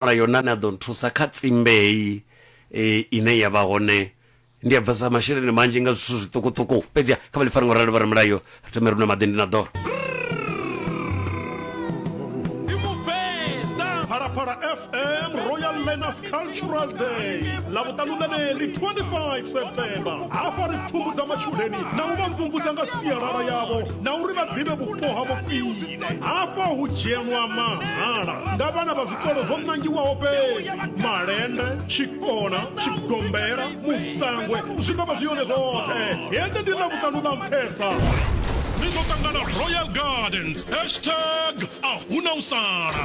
wana yone ane a ḓo nthusa kha tsimbe heyi ine ya vha hone ndi a bvesa masheleni manzhi nga zwithu zwiṱukuṱuku fhedzi kha vha ḽi fara ngo rali vha ri mulayo ri thome runa maḓini na ḓoro Phalaphala FM Royal Learners Cultural Day ḽa vhuṱanu ḽeneḽi 25 September hafha ri pfumbudza matshudeni na u vha mvumvusa nga sialala yavho na uri vha ḓivhe vhupo ha vhufhio hafha hu dzhielwa mahala nga vhana vha zwikolo zwo nangiwaho fhedzi malende tshikona tshigombela musangwe zwi ḓo vha zwi yone zwoṱhe hende ndi na vhuṱanu ḽa nṱhesa ni ḓo ṱangana royal gardens hashtag a hu na u sala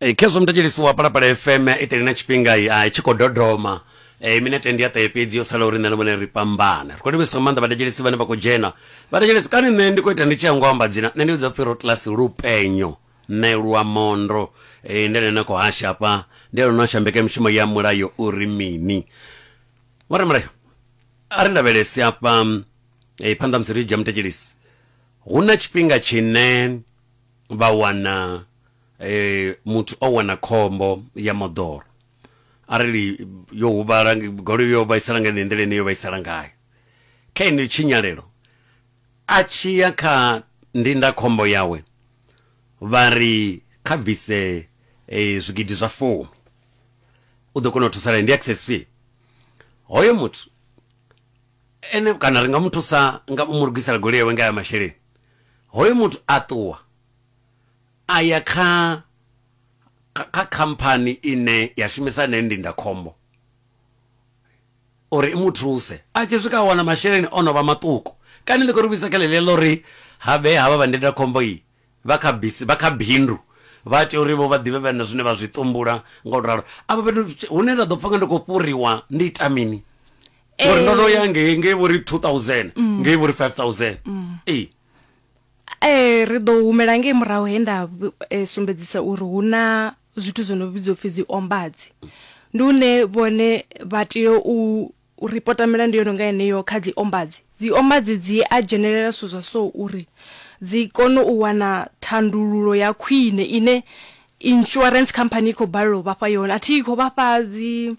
Eh, khezwo muthetshelisiwa palapala fm i teli na tshifhinga i ah, i tshi khou dodoma Eh, minete ndi ya ṱahe fhedzi yo sala uri nṋe na vhone ri fhambana ri khou livhisa nga maanḓa vhathetshelisi vhane vha khou dzhena vhathetshelisi kani nṋe ndi khou ita ndi tshi yango amba dzina nṋe ndi vhidza pfhi rotlasi lupenyo nṋe lwa mondo Eh, ndi ene na khou hasha hafha ndi ene no hasha mbekanyamushumo ya mulayo uri mini vhore mulayo a ri lavhelesi hafha eh, phanḓa musi ri dzhia muthetshelisi hu na tshifhinga tshine vha wana eh, muthu o wana khombo ya moḓoro arali yo huvhala goloi yo vhaisala nga ine nḓila ine yo vhaisala ngayo kha ino tshinyalelo a tshi ya kha ndindakhombo yawe vha ri kha bvise eh, zwigidi zwa fumi u ḓo kona u thusalea ndi access fee hoyo muthu Ene kana ri nga mu thusa nga u mu lugisela goloi yawe nga aya masheleni. Hoyo muthu a ṱuwa a ya kha kha khamphani ine ya shumisa heneyo ndindakhombo uri i mu thuse. A tshi swika a wana masheleni o no vha maṱuku, kani ni khou ri vhuisa kha ḽeḽia ḽa uri ha vhee havha vha ndindakhombo iyi. Vha kha bisi, vha kha bindu, vha tea uri vho vha ḓivhe vhe na zwine vha zwi ṱumbula, nga u ralo. Afha fhethu hune nda ḓo pfa nga ndi khou fhuriwa, ndi ita mini? Ngori ndo no ya ngei, ngei vho ri two thousand, ngei vho ri five thousand. Ee. Ee, ri ḓo humela ngei murahu he nda sumbedzisa uri hu na zwithu zwo no vhidzwa u pfi dzi ombadzi. Ndi hune vhone vha tea u U ripota milandu yo no nga yeneyo kha dziombadzi. Dziombadzi dzi a dzhenelela zwithu zwa so uri dzi kone u wana thandululo ya khwine ine insurance company i khou balelwa u vha fha yone. A thi khou vha fha dzi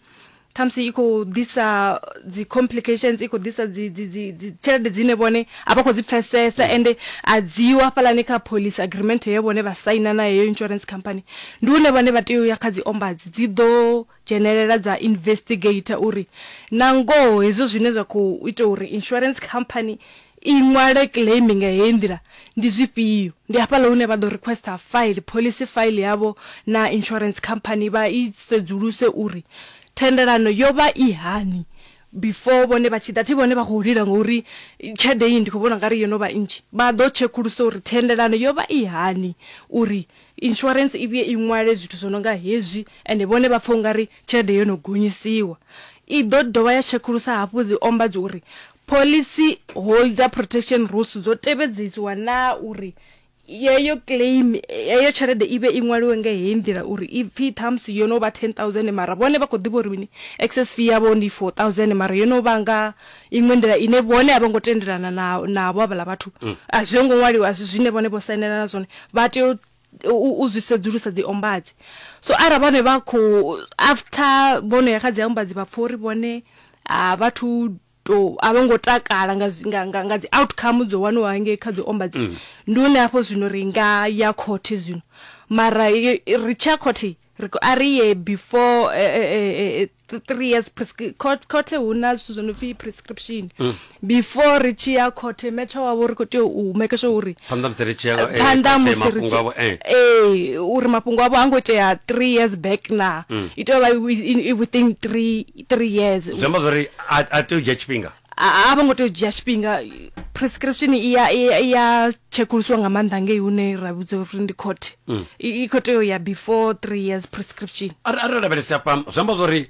khamusi i khou ḓisa dzi complications, i khou ḓisa dzi dzi dzi dzi tshelede dzine vhone a vha khou dzi pfesesa ende a dzi ho hafhaḽani kha policy agreement ye vhone vha saina na heyo insurance company. Ndi hune vhone vha tea u ya kha dziombadzi dzi ḓo dzhenelela dza investigator uri na ngoho hezwo zwine zwa khou ita uri insurance company i ṅwale claim nga heyi nḓila ndi zwifhio ndi hafhaḽa hune vha ḓo requesta file policy file yavho na insurance company vha i sedzuluse uri thendelano yo vha i hani before vhone vha tshi ḓa thi vhone vha khou lila ngauri tshelede iyi ndi khou vhona ungari yo no vha nnzhi vha ḓo tshekulusa uri thendelano yo vha i hani uri Insurance i vhuye i ṅwale zwithu zwo no nga hezwi ende vhone vha pfa u nga ri tshelede yo no gonyisiwa. I ḓo dovha ya tshekulusa hafhu dzi ombadzi uri Policy Holder Protection Rules dzo tevhedzisiwa naa uri yeyo claim, heyo tshelede i vhe i ṅwaliwe nga heyi nḓila uri i pfi ṱhamusi yo no vha ten thousand mara vhone vha khou ḓivha uri mini excess fee yavho ndi four thousand mara yo no vha nga Iṅwe nḓila ine vhone a vho ngo tendelana na, navho havhaḽa vhathu, a zwi ngo ṅwaliwa, a si zwine vhone vho sainelana zwone, vha tea u, u, u zwi sedzulusa dzi ombadzi. So arali vhone vha khou, after vho no ya kha dzi ombadzi vha pfa uri vhone a vha thu tou, a vho ngo takala nga, zwi, nga, nga, nga dzi outcome dzo waniwaho hangei kha dzi ombadzi, ndi hune hafho zwino ri nga ya khothe zwino. Mara i, i, ri tshi ya khothe, ri khou, a ri ye before, e, e, e, e, th- three years prescri- court- khothe hu na zwithu zwo no pfi prescription Mm. before ri tshi ya khothe metsha wavho ri khou tea u make sure uri phanḓa musi ri tshi ya, eh, phanḓa khothe, musi ri mafhungo avho, eh. tshi- ee uri mafhungo avho a ngo itea three years back na Mm. i tea u vha i- i- i within three three years zwi amba zwori a a tea u dzhia tshifhinga a a vho ngo tea u dzhia tshifhinga prescription i ya i ya- i ya tshekulusiwa nga maanḓa ngei hune ra vhudza uri ndi court Mm. i i khou tea u ya before three years prescription Are- arali lavhelese hafha zwi amba zwori